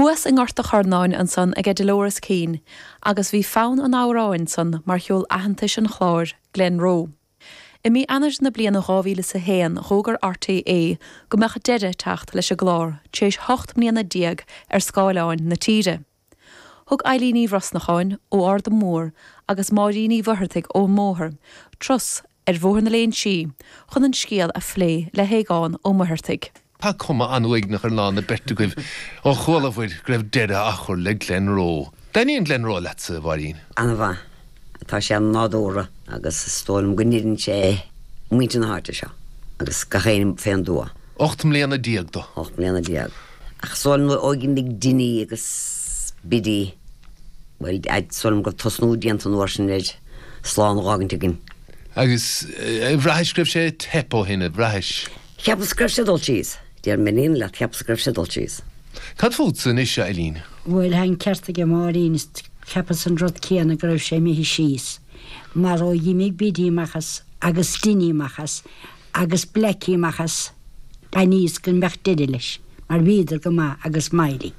Thuas i nGort a' Charnáin ansan aige Dolores Keane agus bhí fonn an amhráin san mar cheol aitheantais an chláir, Glenroe. I mí Eanair na bliana 2000 is a haon dh'fhógair RTÉ go mbeadh deireadh ag teacht leis an gclár tar éis hocht mbliana déag ar scáileáin na tíre. Thug Eilín Uí Bhrosnacháin ó Arda Mór agus Máirín Uí Mhuircheartaigh ón mBóthar turas ar Bhóthar na Léinsí, chun an scéal a phlé le hAogán Ó Muircheartaigh. Tá cuma an-uaigneach ar lán na beirte agaibh, ó chualabhair go raibh deireadh á chur le Glenroe. An dtaitníonn Glenroe leatsa, a Mháirín? An-mhaith. Tá sé an-nádúrtha agus is dóigh liom go n-oiriúnann sé muintir na háite seo agus gach éinne fén dtuath. Ocht mbliana déag do. Ocht mbliana déag. Ach is dóigh liom ó dh'imigh Dinny agus Biddy, bhuel, is dóigh liom go raibh tosnú déanta an uair sin ar slán a dh'fhágaint againn. Agus bhraithis go raibh sé ag teip ó shin, ar bhraithis? Cheapas go raibh sé ag dul síos. Déarfainn leat, cheapas go raibh sé ag dul síos. Cad fútsa anois, a Eilín? Bhuel, tá an ceart aige Máirín, cheapas an rud céanna, go raibh sé imithe síos. Mar ó dh'imigh Biddy amach as, agus Dinny amach as, agus Blackie amach as, d'aithníos go mbeadh deireadh leis, mar bhíodar go maith agus Mary.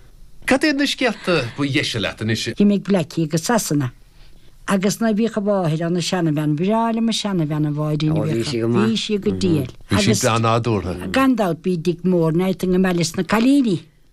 Cad iad na scéalta ba dheise leat anois? Dh'imigh Blackie go Sasana agus nuair bhíodh a mháthair ann, an seanabhean, bhreá liom an seanabhean, an mháthair a bhíodh ann. Ó, bhí sí go maith. Bhí sí go diail. Bhí sí breá nádúrtha. Agus gan dabht bhí Dick Moran go maith leis na cailíní.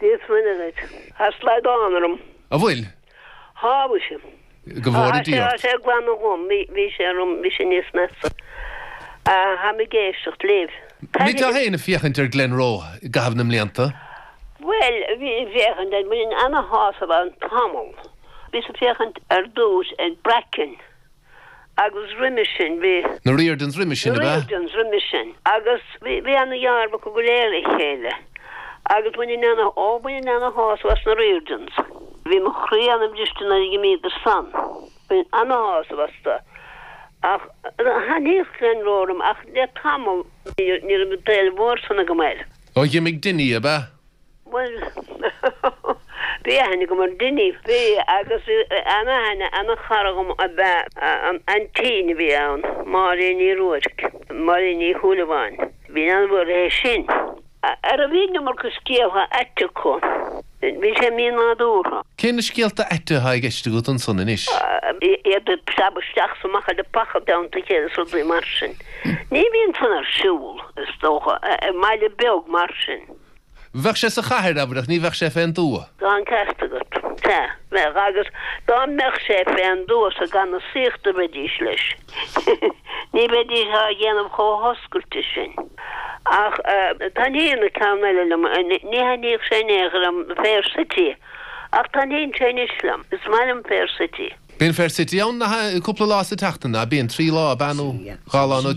This minute. Tá slaghdán orm. An bhfuil? Shábhail sé. Go bhfóire Dia ort. Tá sé ag glanadh dhom. Bhí sé orm, bhí sé níos measa. Táim ag éisteacht libh. Bhíteá féin ag féachaint ar Glenroe i gcaitheamh na mblianta? Bhuel, bhínn ag féachaint air. Bhí mé ana-shásamh ann tamall. Bhíos ag féachaint ar dtús ar Bracken. agus roimis sin bhí na Riordans. Roime sin ab ea? Riordans roime sin. Agus bhí bhí ana dhealramh acu go léir le chéile. Agus bhaininn ana, ó bhaininn ana shásamh as na Riordans. Bhí mo chroí ana briste nuair a dh'imíodar san. Bhaininn ana shásamh astu. Ach thaitníodh Glenroe liom ach le tamall níor níor raibh an t-éileamh mór san agam air. Ó dh'imigh Dinny ab ea? Bhuel, bhí aithne agam ar Dinny. Bhí, agus bhí ana-aithne, ana-chara agam ab ea an t-aintín a bhí ann, Máirín Ní Ruairc, Máirín Ní Shúilleabháin. Bhínn an-mhór leithe sin. Arú bhí an iomarca scéaltha aite acu? Bhí sé mí-nádúrtha. Cé na scéalta aite atá i gceist agat ansan anois? Iad ag preabadh isteach is amach i leapacha déanta agus rudaí mar sin. Ní bhíonn san ar siúl, is dócha, i mbaile beag mar sin. Bheadh sé sa chathair, abair, ach ní bheadh sé fén dtuath. Tá an ceart agat. Sea, bheadh, agus dá mbeadh sé fén dtuath i ngan fhiosaíocht a bheidís leis, ní bheidís á dhéanamh chomh hoscailte sin. Ach taitníonn an ceann eile liom, ní thaitníodh sé in aon chor liom, Fair City, ach taitníonn sé anois liom. Is maith liom Fair City. Bíonn Fair City ann cúpla lá sa tseachtain, a' bíonn, trí lá a' nó dhá lá nó.